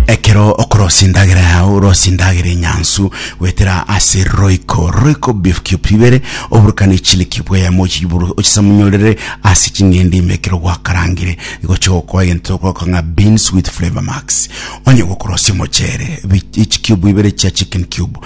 ekero okorosia endagera yao orosie endagera enyansu goetera ase roiko roiko beef cube ibere oburukane chili cube eyemo ochiburu ochisamunyorere ase ching'ende ime ekero gwakarangire igochia gokoa egento togoka ng'a beans with flavour max onye gokorosia omochere bi- echi cube ibere chia chicken cube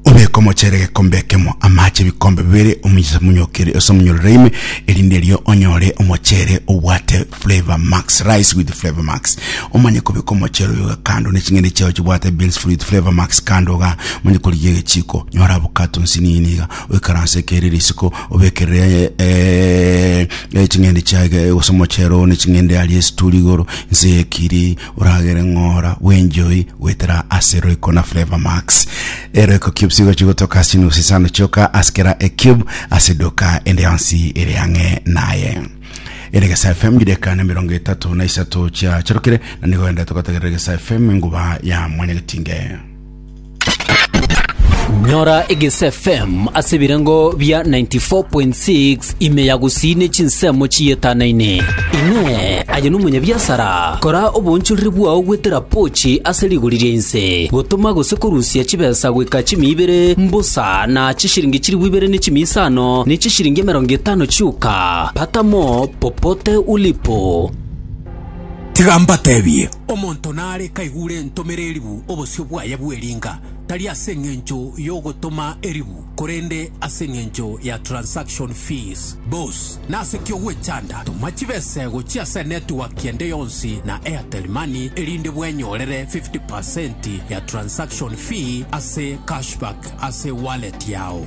Obeke omochere egekombe ekemo, amache ebikombe bibere, ominse omonyokerie ase omonyororo ime, erinde erio onyore omochere obwate Flavor Max, rice with Flavor Max. Omanye kobeka omochere oyo iga kando ne ching'ende chiao chibwate beans with Flavor Max kando iga, omanye korigia egechiko, nyora avocado nsinini iga, oikaranse ekeire risiko, obekerere eh, eh, ching'ende chiaye gose omochere oo ne ching'ende aria esituri igoro, nse ekiri, Oragere ng'ora bw'enchoi goetera ase Royco na Flavour Max. E Royco Cubes igo chigotoka ase chinusu isano chioka ase kera e cube ase edoka ende yonsi ere ang'e naye. Eregesa FM chideka na mirongo etato na isato chiacharokire na nigo ende togotegerera Eregesa FM enguba ya mwanyagetinge. Nyora egese FM ase ebirengo bia 94.6 ime ya gusii ne chinsemo chiyetanane. Inee! Aye nomonyabiasara? Kora oboonchoreri bwao gwetera pochi ase rigori ria inse, gotoma gose korusia chibesa goika chimia ibere mbosa na chishiringi chilifu ibere ne chimia isano ne chishiringi emerongo etano chioka. Pata mo popote ulipo. Tiga mbatebie, omonto nare kaigure entomere eribu obosio bwaye bw'eringa, tari ase engencho y'ogotoma eribu, korende ase engencho ya transaction fees. Bos, nase ki ogwechanda? Toma chibese gochia ase enetiwaki ende yonsi na Airtel Money erinde bwenyorere 50% ya transaction fee ase cashback ase wallet yao.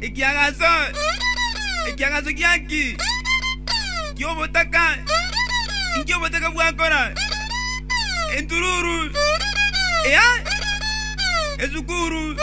Ekiagaso, ekiagaso kia nki? Ki'obotaka. Inki obotaka bwakora? Entururu, eya esukuru.